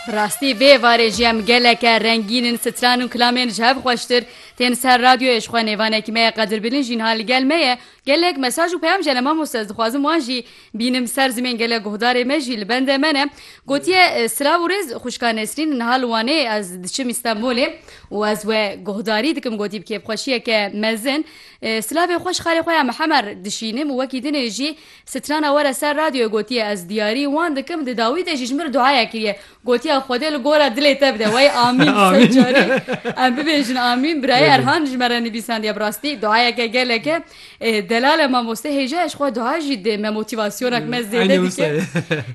Bi rastî vê êvarê jî em geleke rengîn in, stran û kilamên ji hev xweştir tên ser radyoyê. Ji xwe nêvanekî me ye Qadir Bilin jî niha li gel me ye. Gelek mesaj û peyam ji hene mamoste ez dixwazim wan jî bînim ser zimên gelek guhdarê me jî li bende me ne. Gotiye silav û rêz xwişka Nesrîn niha li Wanê ez diçim Îstenbolê û ez we guhdarî dikim gotî bi kêfxweşiyeke mezin silavê xwe ji xalê xwe ya Mihemer dişînim û wekî dinê jî Strana were ser radyoyê gotiye ez diyarî wan dikim di dawî de jî ji min re duaya kiriye gotiya Xwedê li gora dilê te bide wey amîn sed carî em bibêjin amîn birayê Erhan ji me re nivîsandiye bi rastî duayeke geleke delal e mamoste hêja ye ji xwe dua jî dê me motîvasyonek me zêde dike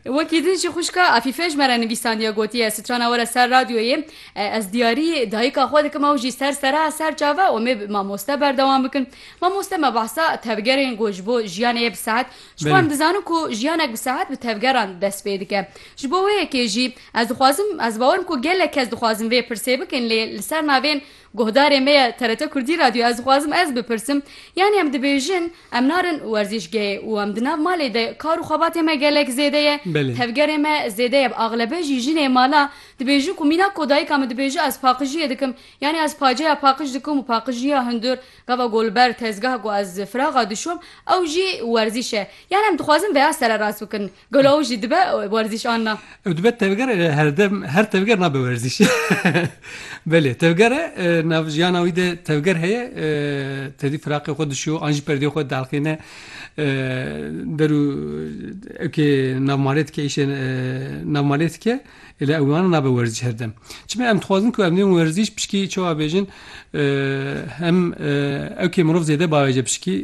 wekî din jî xwişka Efîfe ji me re nivîsandiye gotiye strana were ser radyoyê ez diyarî dayika xwe dikim ew jî ser sera ser çav e omê mamoste berdewam bikin Mamoste me behsa tevgerên ku ji bo jiyanê ye bi sehet, ji bo Belê. em dizanin ku jiyanek bi sehet bi tevgeran dest pê dike. Ji bo wê yekê jî ez dixwazim, ez bawer im ku gelek kes dixwazin vê pirsê bikin lê li ser navên guhdarê me ye TRT Kurdî Radio ez dixwazim ez bipirsim yanî em dibêjin em narin werzîşgehê û em di nav malê de kar û xebatê me gelek zêde ye, Belê. tevgerê me zêde ye bi axlebe jî jinê mala dibêjin ku mîna ku dayika min dibêje ez paqijiyê dikim, Yanî ez paceya paqij dikim û paqijîya hundir gava golber tezgah ku ez firaxa dişom ew jî werzîş e. Yanî em dixwazin veya sererast bikin. Gelo ew jî dibe werzîş an na? Ew dibe tevger e herdem her tevger nabe werzîş. Belê tevger e nav jiyana wî de tevger heye tevî firaqê xwe dişo an jî perdeyê xwe dielqîne der û eke nav malê dike îşê nav malê dike. Lê ew wiha nabe werzîş her dem. Çima em dixwazin ku em dê werzîş pişkî çawa bêjin hem ewkê mirov zêde bavêje pişkî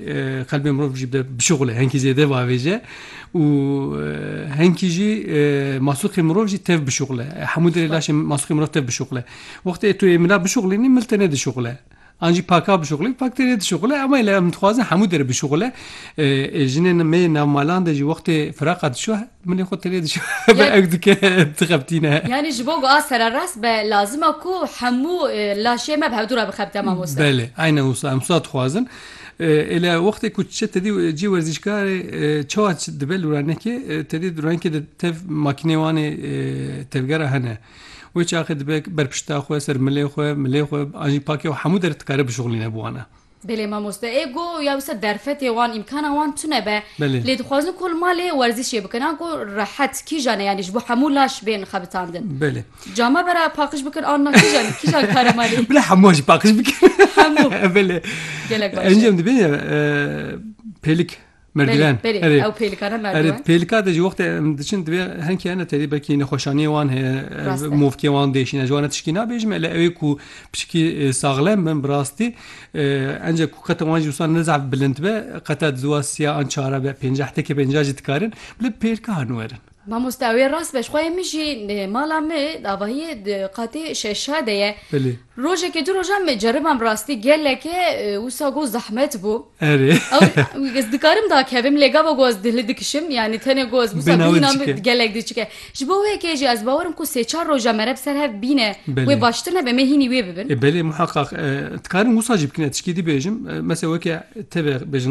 qelbê mirov jî de bişixule henkî zêde bavêje û henkî jî masûqê mirov jî tev bişixule. Hemû derê laşê masûqê mirov tev bişixule. Wextê tu yê mila bişixulînî mil te nedişixule. An jî paka bişuxulî, fakterê dişuxule ema lê em dixwazin hemû derê bişuxule. Jinên me yê navmalan de jî wextê firaqa dişo milê xwe tenê dişo hebe ew dike dixebitîne. Yanî ji bo ku a sererast be lazim e ku hemû laşê me bi hevdû re bixebite mamoste. Belê, aynen wisa em wisa dixwazin. Ê lê wextê ku diçe tedî cihê werzîşkarê çawa dibe lûranekê tedî lûranekê de tev makîneyê wan ê tevgera hene. Wê çaxê dibe ber pişta xwe, ser milê xwe, milê xwe an jî pakê û hemû der dikare bişuxlîne bi wan e. Belê mamoste ê go ya wisa derfetê wan îmkana wan tune be. Belê. Lê dixwazin ku li malê werzîşê bikin an ku rehet kîjan e yanî ji bo hemû laş bên xebitandin. Belê. Ca me vera paqij bikin an na kîjan kîjan kare malê. Bila hemû an jî paqij bikin. Hemû. Belê. Gelek baş e. Encam dibêje pêlik. Merdiven. Belê, belê. Ew pêlika ne merdiven. Erê pêlika de ji wextê em diçin divê henkê hene terî belkî nexweşaniyê wan heye movkê wan dêşîn ez ji wan tişkî nabêjim ele ewê ku piçikî saxlem bin bi rastî ence ku qete wan jî wisa ne zaf bilind be qete di ziwa siya an çare be pênceh tekê pênceh jî dikarin bila pêlka hanu werin. Mamoste ew ê rast be, ji xwe yê min jî mala me di avahiyê di qatê şeşa de ye. Belê. Rojekê du rojan me ceribam rastî geleke wisa got zehmet bû. Erê. Ew ez dikarim dakevim lê gava ku ez dihli dikişim yanî tenê ku ez wisa bîna min gelek diçik e. Ji bo wê kê jî ez bawer im ku sê çar roja me re bi ser hev bîne wê baştir nebe me hînî wê bibin. Ê belê muheqeq dikarim wisa jî bikim ez tişkî dibêjim. Mesela weke teve bêjin.